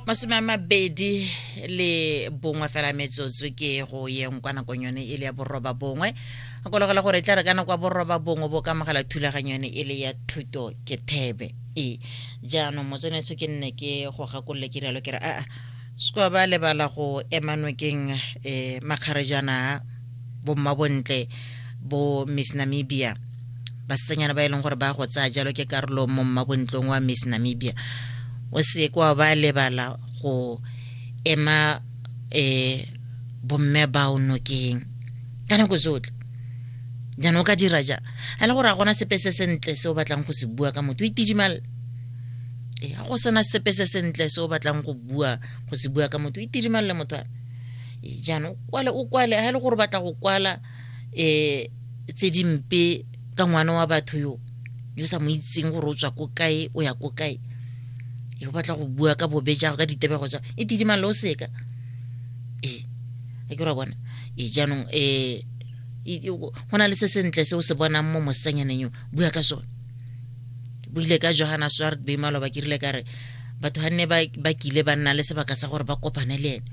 masome a mabedi le bongwe fela metsotso ke go yeng kwa nakong yone e le ya boroba bongwe kologela gore e tla re ka nako ya boroba bongwe bo ka mogela thulaganyo yone e le ya thuto ke thebe e jaanong motsonetso ke nne ke go gakolole ke rialo ke re aa sekoa ba lebala go emanokeng um eh, makgarejana a bommabontle bo miss namibia basetsanyana ba e leng gore ba go tsaya jalo ke karolo mo mmabontlong wa miss namibia o se kwa ba lebala go ema um bomme bao nokeng ka nako tsotlhe jaanong o ka dira jang a le gore a gona sepe se sentle se o batlang go se bua ka motho o itidimale ee ga go sena sepe se sentle se o batlang go bua go se bua ka motho o itidimale motho a ee, jaanong kwale o kwale ga e le gore batla go kwala um tse dimpe ka ngwana wa batho yo yo sa mo itseng gore o tswa ko kae o ya ko kae e o batla go bua ka bobe jago ka ditebego jago e tidimang le o seka ee a ke ra bona ee jaanong um go na le se sentle se o se bonang mo mosanyaneng yo bua ka sone buile ka johana swart beimalo ba kirile ka re batho ga nne ba kile ba nna le sebaka sa gore ba kopane le ene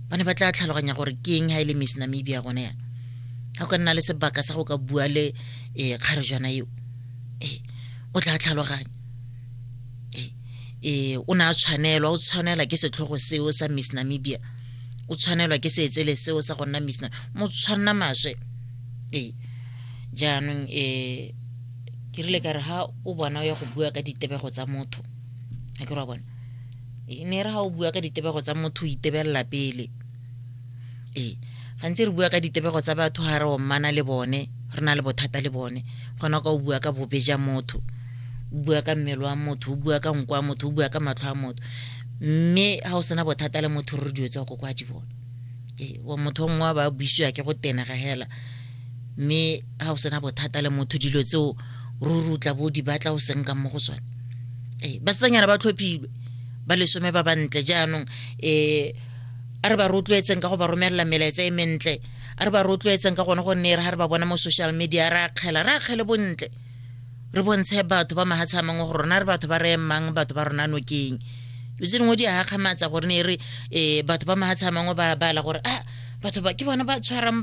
ba ne ba tla tlhaloganya gore ke eng ga e le miss namibia gone yana ga go ka nna le sebaka sa go ka bua le um kgarejwana eo e o tla tlhaloganya e o ne a tshwanelwa o tshwanela ke setlhogo seo sa miss namibia o tshwanelwa ke seetsele seo sa go nna miss mo tshwanna maswe ee jaanong um ke rile ka re ha o bona o ya go bua ka ditebego tsa motho ga ke re wa bona e ne re ga o bua ka ditebego tsa motho o itebelela pele ee gantsi re bua ka ditebego tsa batho ga re ommana le bone re na le bothata le bone gona o ka o bua ka bobe ja motho o bua ka mmele wa motho o bua ka nko wa motho o bua ka matlho a motho mme ga o sena bothata le motho re dilo tsa go kwa di bone ee motho o mongwe ba buisiwa ke go tenega hela mme ga o sena bothata le motho dilo tseo ruri o tla bo di batla o seng ka mo go tsone ee basetsanyana ba tlhophilwe ba lesome ba bantle jaanong um a re ba rotloetseng ka go ba romelela melaetsa e mentle a re ba rotloetseng ka gone gonne re ga re ba bona mo social media re akgela re akgele bontle re bontshe batho ba mahatshe a mangwe go rona re batho ba re emang batho ba rona nokeng lo tse dingwe di a gakgamatsa gore ne e re um batho ba mahatshe a mangwe ba bala gore a ah, batho ba ke bona ba tshwarang